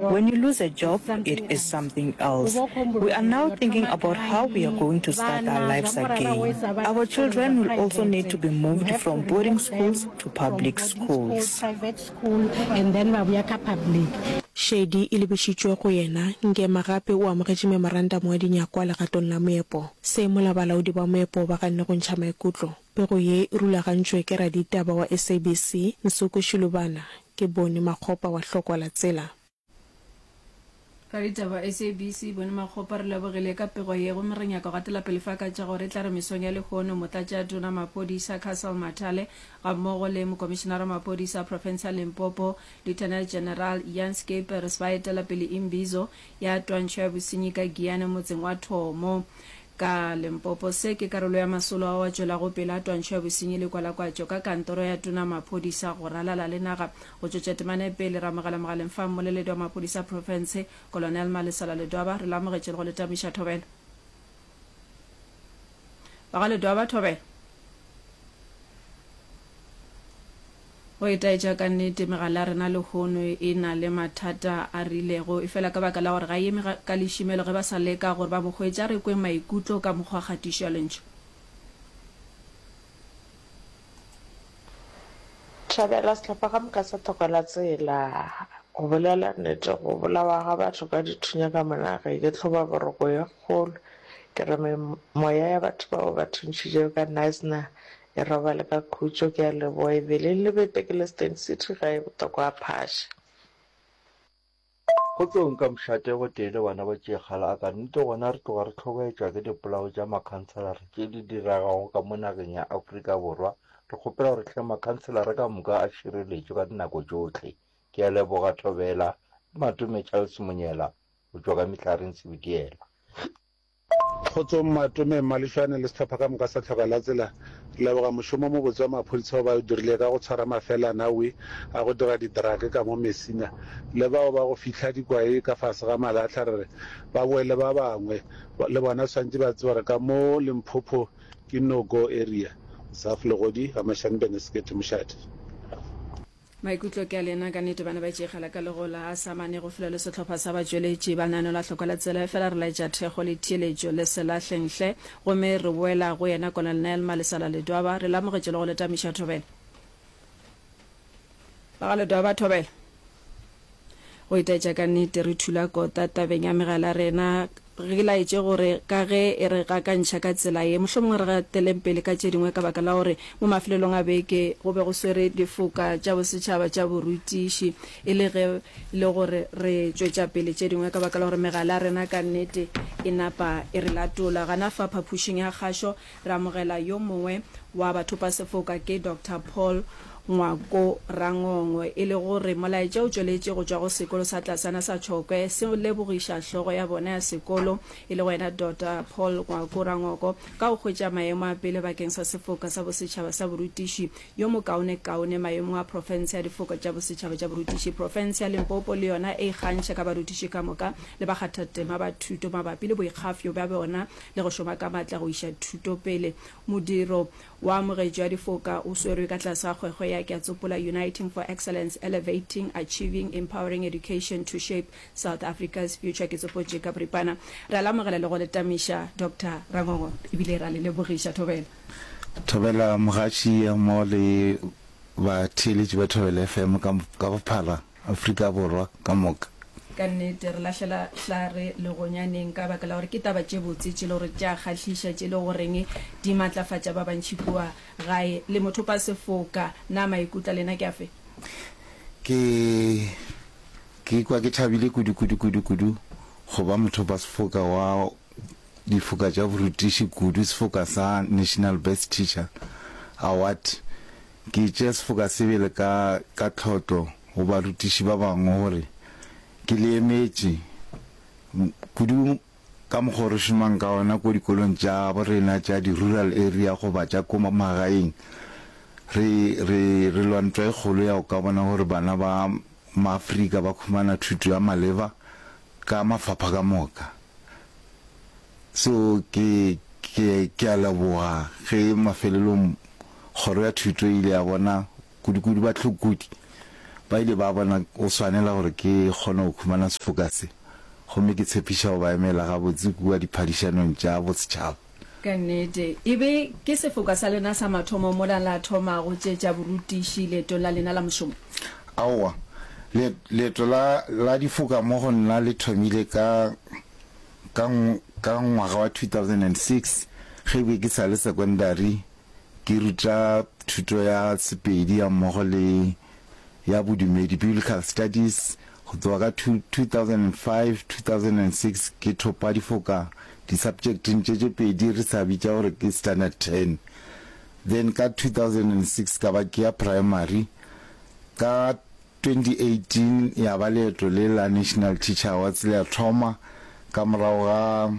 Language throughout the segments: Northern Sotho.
When you lose a job, it is something else. We are now thinking about how we are going to start our lives again. Our children will also need to be moved from boarding schools to public schools. Shady e lebišitšwe go yena, Ngema gape o amogetše memorandamo wa dinyakwa legatong la moepo. Se mola balaodi ba moepo ba ganne go ntšha maikutlo. Pego ye e rulagantšwe ke raditaba wa SABC, Nsuku Shilubana, ke Boni Makgopa wa Hlokwala Tsela. Raditaba wa SABC, Boni Makgopa, re lebogile ka pego ye gomme re nyaka go atela pele fa ka tša gore e tla re mesong ya lehono Motlatšatona Maphodisa Castle Mathale gammogo le Mokomišenara wa Maphodisa a Profense ya Limpopo Lieutenant General Jan Scheepers ba etela pele Imbizo ya Twantšho ya Bosenyi ka Giyane motseng wa Thomo Ka Limpopo, se ke karolo ya masolo ao a tšwelago pele a twantšho ya bosenyi le kwalakwatšo ka kantoro ya tona maphodisa go ralala le naga. Go tšwetša temana pele, re amogela mogaleng fa mmoleledi wa maphodisa profense, Kolonel Malisola Ledwaba, re le amogetše le go le tamiša thobela. Ba ga Ledwaba, thobela. Go itaetša ka nnete, megala ya rena lehono e na le mathata a rilego, efela ka baka la gore ga e eme ka lešimelo ge ba sa leka gore ba bo hwetše. A re kweng maikutlo ka mokgwa wa kgatišo ya Lentšu. Thabela sehlopha ka moka sa thoko la tsela. Go bolela nnete, go bolawa ga batho ka dithunya ka mona ga e ke tlhoba boroko ye kgolo. Ke re memoya ya batho bao ba thuntšhitšego ka Knysna Ke robale ka khutšo ke a leboa e beleng le be Tekeleston City ga e botokwa a phaša. Go tlo nka mšate gotee le bana ba tšee kgale a ka nnete gona re tloga re hlobaetšwa ke dipolao tša makhanselara tše di diragago ka mo nageng ya Afrika Borwa. Re kgopela gore hle makhanselara ka moka a šireletšwe ka dinako tšohle. Ke a leboga Thobela le Matome Charles Monyela go tšwa ka Mehlareng Sebitiela. Kgotsong Matome, Mmalešwane le sehlopha ka moka sa Tlhoka la Tsela. Re leboga mošomo o mobotse wa maphodisa wo ba o dirile ka go tshwara mafelana wi a go dira didrake ka mo Messina le bao ba go fihla dikwae ka fase ga malahla re re ba boe le ba bangwe le bona swantše ba tseba gore ka mo Limpopo ke no go area. Zaf Legodi, Gamashane Bene Sekete Mošate. Maikutlo ke a lena ka nete bana ba tšegala ka legola a sa mane go fula le sehlopha sa batšweletši ba nano la hloko la tsela efela re laetša thekgo le theeletšo le se lahleng hle gomme re boela go yena Colonel Nelma le sa la Ledwaba re le amogetše le go le tamiša thobela ba ga Ledwaba thobela Go itaetša ka nnete, re thula kota tabeng ya megala ya rena. Re e laetše gore ka ge e re gakantšha ka tsela ye, mohlomongwe re gateleng pele ka tše dingwe ka baka la gore mo mafelelong a beke go be go swere difoka tša bosetšhaba tša borutiši e le ge e le gore re tšwetša pele tše dingwe ka baka la gore megala ya rena ka nnete e napa e re latola. Gana fa phapošing ya kgašo Re amogela yo mongwe wa bathopasefoka ke Doctor Paul Ngwako Rangongwe e le go re molaetša o tšweletše go tšwa go sekolo sa tlasana sa Tšhokwe se lebogiša hlogo ya bona ya sekolo e le go yena Doctor Paul Ngwako Rangoko ka go hwetša maemo a pele bakeng sa sefoka sa bosetšhaba sa borutiši yo mokaone kaone maemong a profense ya difoka tša bosetšhaba tša borutiši profense ya Limpopo le yona e ikgantšha ka barutiši ka moka le bakgathatema ba thuto mabapi le boikgafyo bja bona le go šoma ka matla go iša thuto pele. Modiro wa Amogetšo ya Difoka o swerwe ka tlase ga kgwekgwe ya Keatsopola Uniting for Excellence, Elevating, Achieving, Empowering Education to Shape South Africa's Future ke tsopotše ka boripana. Re a le amogela le go le tamiša Doctor Rangongo e bile re a le lebogiša. Thobela. Thobela Mogatši mmogo le batheeletši ba Thobela FM ka bophara. Afrika Borwa ka moka. Ka nnete, re lahlela hlare legonyaneng ka baka la gore ke taba tše botse tše e lego gore tša kgahliša, tše e lego goreng di matlafatša ba bantši kua gae. Le mothopasefoka, na maikutlo a lena ke afe? Ke, ke ikwa ke thabile kudu, kudu, kudu, kudu go ba mothopasefoka wa difoka tša borutiši kudu, sefoka sa National Best Teacher Award. Ke tšea sefokasebele ka ka tlhotlo go barutiši ba bangwe gore ke le emetše, kudu ka mokgwa o re šomang ka ona ko dikolong tša bo rena tša di-rural area goba tša ko magaeng. Re, re, re lwa ntwa e kgolo ya go ka bona gore bana ba Maafrika ba khumana thuto ya maleba ka mafapha ka moka. Seo ke, ke, ke a leboga ge mafelelong Kgoro ya Thuto e ile ya bona, kudukudu bahlokodi ba ile ba bona go swanela gore ke kgone go humana sefoka se, gomme ke tshepiša go ba emela gabotse kua diphadišanong tša bosetšhaba. Ka nnete. E be ke sefoka sa lena sa mathomo mola la thomago tše tša borutiši leetong la lena la mošomo? Aowa. Leet, leeto la, la difoka mo go nna le thomile ka. Ka, ka ngwaga wa 2006, ge be ke sa le sekondari, ke ruta thuto ya Sepedi ya mmogo le ya Bodumedi, Biblical Studies. Go tloga ka 2005, 2006, ke thopa difoka di-subjecteng tše tše pedi re sa bitša gore ke Standard Ten. Then ka 2006 ka ba ke ya Primary. Ka 2018 ya ba leeto le la National Teacher Awards le a thoma ka morago ga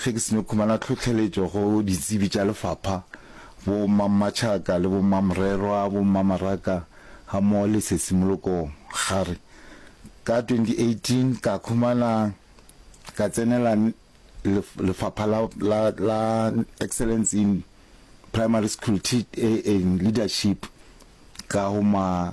ge ke seno khumana tlhohleletšo go ditsebi tša lefapha, bo mmammatšhaka le bo mmamorerwa, bo mmamaraka ga mmogo le sesimoloko gare. Ka 2018 ka khumana ka tsenela lefapha la la la Excellence in Primary School Tea and Leadership ka go ma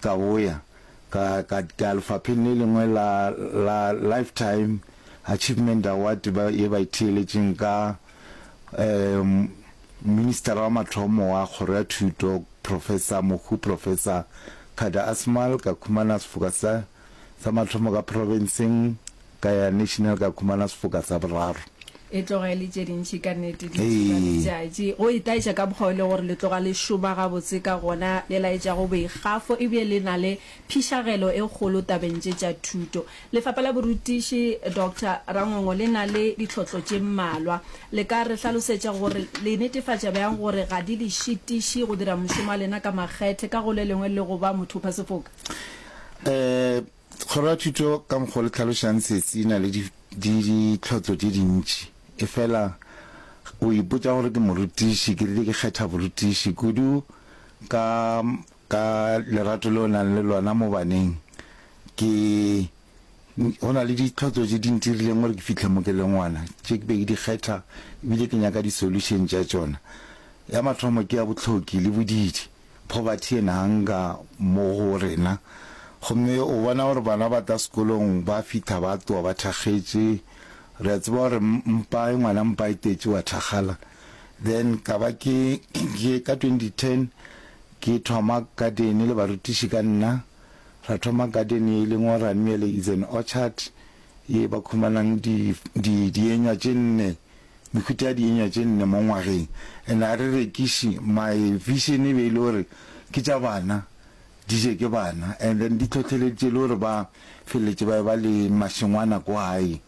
Ka boya ka, ka, ka ya lefapheng le lengwe la, la Lifetime Achievement Award ba, ye ba e theeletšeng ka um, Ministera wa mathomo wa Kgoro ya Thuto, Professor Mohu, Professor Kada Asmal, ka khumana sefoka sa. Sa mathomo ka profenseng, ka ya national ka khumana sefoka sa boraro. E tloga e le tše dintši ka nnete di tšiba letšatši, go e taetša ka mokgwa o le gore le tloga le šoma gabotse ka gona, le laetšago boikgafo e bile le na le phišagelo e kgolo tabeng tše tša thuto. Lefapha la Borutiši, Doctor Rangongo, le na le ditlhohlo tše mmalwa. Le ka re hlalosetša gore le netefatša bjang gore ga di le šitiši go dira mošomo wa lena ka makgethe ka go le lengwe le go ba mothophasefoka? um kgoro ya thuto ka mokgwa le tlhalošang sesi e na le ditlhotlo tše dintši e fela o ipotsa gore ke morutiši ke rile ke kgetha borutiši kudu ka ka lerato le o nang le lona mo baneng ke go na le ditlhotlo tše di ntirileng gore ke fitlhe mo ke le ngwana tše ke be ke di kgetha ebile ke nyaka di-solution tša tšona ya mathomo ke ya botlhoki le bodidi Poverty and hunger mo go rena. Gomme o bona gore bana ba tla sekolong ba fitha ba tlowa ba thakgetše. Re a tseba gore mpa e ngwana mpa e tetše wa thakgala. Then ka ba ke ka twenty ten ke thoma garden le barutiši ka nna. Ra thoma garden e leng gore ra nmele is an orchard ye ba khumanang di di dienywa tše nne. Mehuta ya dienywa tše nne mo ngwageng, and a re rekiše, my vision e be e le gore ke tša bana, di je ke bana, and then di hlohleleditše le gore ba feleletše ba eba le mašengwana ko gae.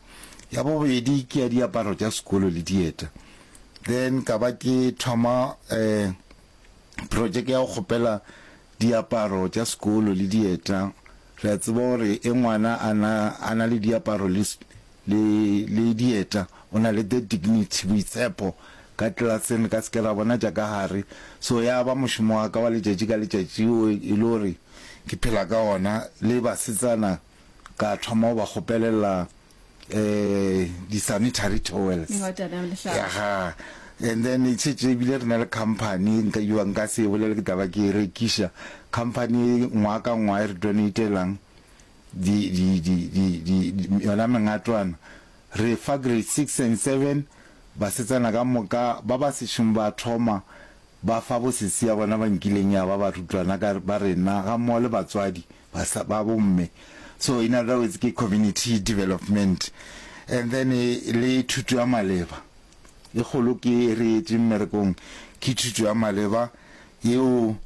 Ya bobedi ke ya diaparo tša sekolo le dieta. Then ka ba ke thoma um projeke ya go kgopela Diaparo tša sekolo le dieta, re a tseba gore e ngwana a na, a na le diaparo le, le, le dieta, o na le the dignity, boitshepho, ka klaseng re ka se ke ra bona tša ka gare. So ya ba mošomo wa ka wa letšatši ka letšatši o e le gore ke phela ka ona, le basetsana ka thoma go ba kgopelela di-sanitary towels yaga and then e tshetse ebile re na le company e nka iwang ka se bolele ke taba ke e rekiša company e ngwa ka ngwa e re donatelang yona mengatwana re fa grade six and seven basetsana ka moka ba ba sešong ba thoma ba fa bosesi ya bona ba nkileng ya ba barutwana ba rena ga mmogo le batswadi ba sa ba bomme so in other words ke community development and then le thuto ya maleba e kgolo ke re etse mmerekong ke thuto ya maleba yeo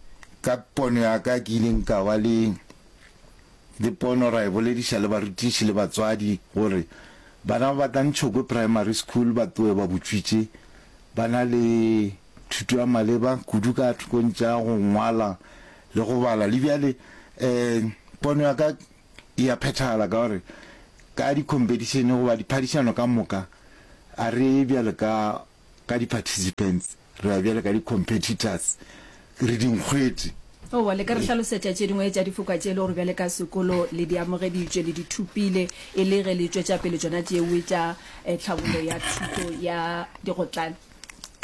ka pono ya ka ke ileng ka ba le le pono ra e bolediša le barutiši le batswadi gore bana ba tla ntšhokwe primary school ba tloe ba botswitše ba na le thuto ya maleba kudu ka thokong tša go ngwala Le go bala. Le bjale um pono ya ka e a phethahala ka gore ka di-competition goba diphadišano ka moka a re ye bjale ka ka di-participants re ya bjale ka di-competitors re dinkgwete. Owa, le ka re hlalosetša tše dingwe tša difokwa tše e le gore bjale ka sekolo le di amogeditšwe, le di thopile e le ge le tšwetša pele tšona tšeoe tša um tlhabollo ya thuto ya digotlane?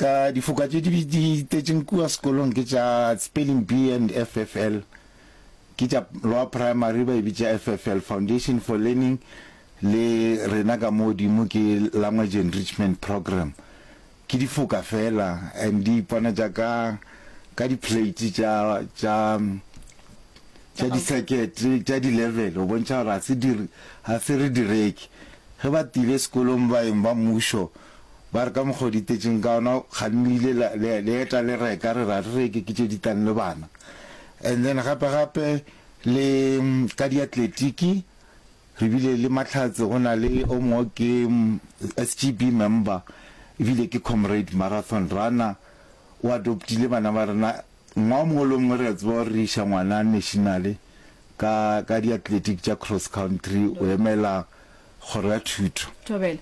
Ka difoka tše di di itetšeng kua sekolong ke tša Spelling Bee and FFL, ke tša Lower Primary ba e bitša FFL, Foundation for Learning, le rena ka mo godimo ke Language Enrichment Program. Ke difoka fela and di iponatša ka ka di-plate tša tša tša di-circuit tša di-level go bontšha gore ga se re direke. Ge ba tile sekolong baeng ba mmušo, Ba re ka mokgwa o di tetšeng ka ona ga le ile le eta le reka re ra re reke ke tše di tlang le bana and then gape gape le ka di atletiki re bile le mahlatse go na le o mongwe ke SGB member ebile ke comrade marathon runner o adoptile bana ba rena ngwa o mongwe le o mongwe re a tseba gore re iša ngwana nationale ka ka di atletiki tša cross country o emela Kgoro ya Thuto. Thobela.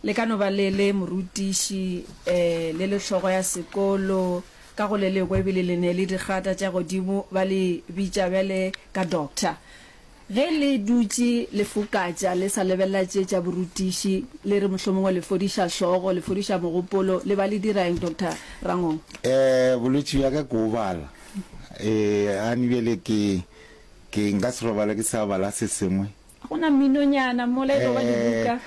Le ka no ba le le morutiši, le le hlogo ya sekolo, ka go le lekwe, ebile le ne le digrata tša godimo, ba le bitša bjale ka Doctor. Ge le dutše le fokatša, le sa lebelela tše tša borutiši, le re mohlomongwe le fodiša hlogo, le fodiša mogopolo, le ba le dira eng, Doctor Rangong? Ee, bolwetši bja ka ke o bala. Ee, Annie, bjale ke, ke nka se robale ke sa bala se sengwe. Go na minonyana mola e tlo ba dibuka.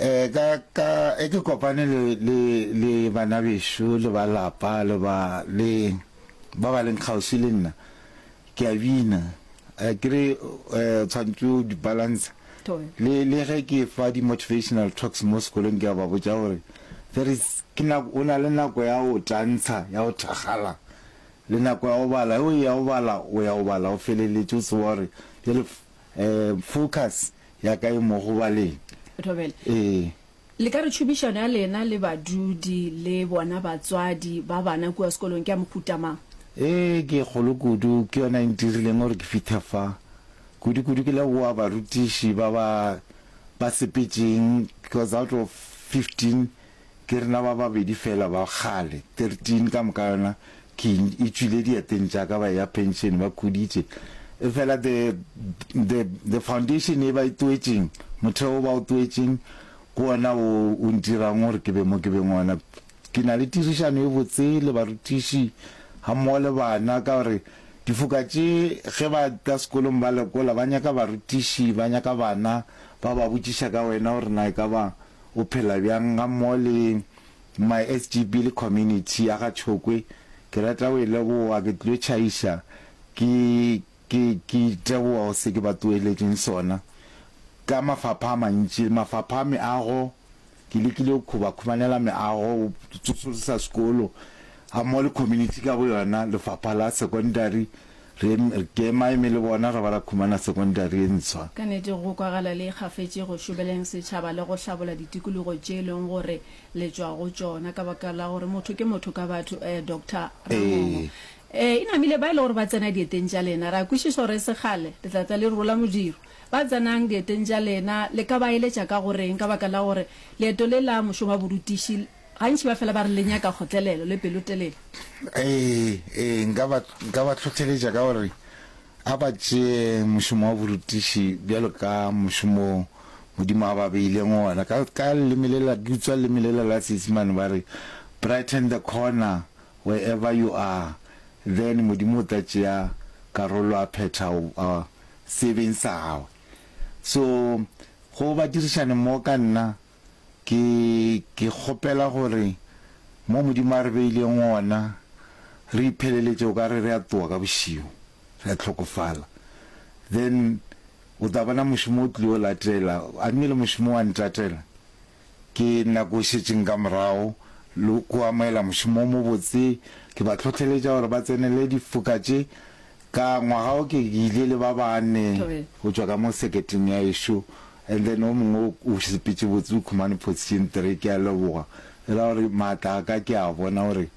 Eh, ka, ka, e ke kopane le, le, le banabešo, le ba lapa, le ba, le, ba ba leng kgauswi le nna. Ke a bina. Eh, ke re, eh, tshwantse o di balance. Tobe. Le, le ge ke fa di-motivational talks mo sekolong, ke a ba botša gore, there is, ke nako, o na le nako ya go tantsha, ya go thakgala, le nako ya go bala. Ge o ya go bala, o ya go bala, o feleletše o tseba gore, jale, Focus ya ka e mo go baleng. Thobela, Ee. Le ka re tšhomišano ya lena le badudi le bona batswadi ba bana kua sekolong ke ya mohuta mang? Ee, ke e kgolo kudu. Ke yona e ntirileng gore ke fithe fa. Kudu-kudu ke leboa barutiši ba ba ba sepetšeng because out of 15, Ke rena ba babedi feela ba kgale, 13 ka moka yona king e tšwile dieteng tša ka ba eya pension ba khuditše. Efela the, the, the foundation e ba e toetšeng, motheo o ba o toetšeng, ke wona o, o ntirang gore ke be mo ke beng ona. Ke na le tirišano e botse le barutiši ga mmogo le bana ka gore difoka tše ge ba tla sekolong ba lekola ba nyaka barutiši, ba nyaka bana ba ba botšiša ka wena gore na e ka ba O phela bjang ga mmogo le my SGB le community ya ga Tšhokwe ke rata go e leboga ke tlilo tšhaiša ke ke ke iteboga go se ke ba tsoeletšeng sona ka mafapha a mantši mafapha a meago ke lekile go khuba khumanela meago go tsosolosa sekolo ga mmogo le community ka boyona lefapha la secondary Re kemaeme le bona ge ba la khumana sekondari e ntshwa. Ka nete go kwagala le ikgafetše go šobeleng setšhaba le go hlabola ditikologo tše e leng gore le tšwa go tšona ka baka la gore motho ke motho ka batho, ee, Doctor Ramongo. Ee, e namile ba e le gore ba tsena dieteng tša lena. Re a kwešiša gore e se kgale le tla tla le rola modiro. Ba tsenang dieteng tša lena le ka ba eletša ka go reng ka baka la gore leeto le la mošomaborutiši Gantši ba fela ba re, Le nyaka kgotlelelo le pelotelele. Ee, ee, nka ba, nka ba hlohleletša ka gore a ba tšee mošomo wa borutiši bjalo ka mošomo wo Modimo a ba beileng wona. Ka, ka leleme lela, ke utswa leleme lela la Seisemane, ba re, Brighten the corner wherever you are, then Modimo o tla tšea karolo a phetha a, seebeng sa Gagwe. So, go badirišane mmogo ka nna, Ke, ke kgopela gore mo Modimo a re beileng gona, re ipheleletše o ka re re a tloga ka bošego, re a hlokofala. Then o tla bona mošomo o tlile o latela, a mme le mošomo wa ntatela. Ke nako e šetšeng ka morago, le go amogela mošomo o mobotse. Ke ba hlohleletša gore ba tsenele difoka tše. Ka ngwaga wo ke ile le ba bane go tšwa ka mo seketeng ya ešo, And then o mongwe o o sepetše botse o khumane position three ke a leboga e ra gore maatla a ka ke a bona gore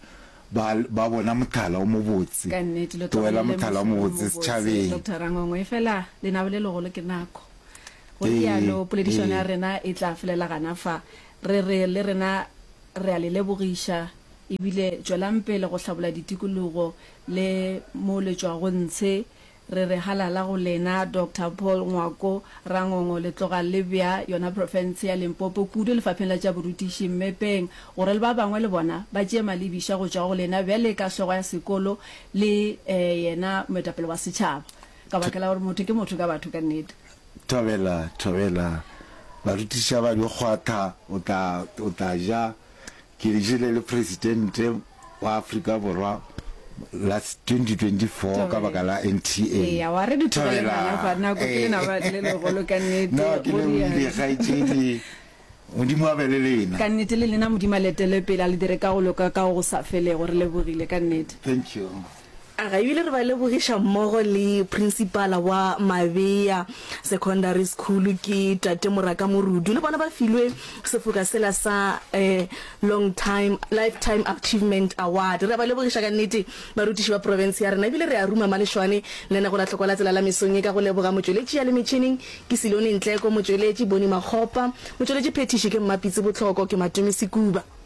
ba ba bona mothala o mobotse Ka nnete, lo tlohela tlogelele mothala o mohlolo mobotse mobotse, setšhabeng Doctor Rangongwe, efela lenabo le legolo ke nako. Go Ee, realo, poledišano ya ee. rena e tla felela gana fa. Re re le rena re a le lebogiša e bile tšwelang pele go hlabola ditikologo le mo le tšwago ntshe Re re halala go lena Doctor Paul Ngwako Rangongo le tloga le bea yona profense ya Limpopo kudu lefapheng la tša borutiši mmepeng gore le ba bangwe le bona ba tšee malebiša go tšwa go lena bjale ka hlogo ya sekolo le yena moetapele wa setšhaba ka baka la gore motho ke motho ka batho ka nnete. Thobela, thobela. Barutiša ba dikgwatha o tla, o tla ja Ke jele le Presidente wa Afrika Borwa la 2024 ka baka la NTA. Eya, wa re di tlogele bana ba nako ke lena ba le legolo ka nnete. No, ke le wile kgaetšedi. Modimo a be le lena. Ka nnete le lena Modimo a le etele pele a le dire ka go loka ka go go sa felego. Re lebogile ka nnete. Thank you. A re ebile re ba lebogiša mmogo le Prinsipala wa Mabea Secondary School ke Tate Moraka Morudu le bona ba filwe sefoka sela sa Long Time Lifetime Achievement Award. Re a ba lebogiša ka nnete barutiši ba profense ya rena ebile re a ruma malešwane lenango la Tlhoko la Tsela la mesong ye ka go leboga motšweletši ya le metšhineng ke Silone Ntleko, motšweletši Boni Makgopa, motšweletši phethiši ke Mmapitsi Botlhoko, ke Matumi Sekuba.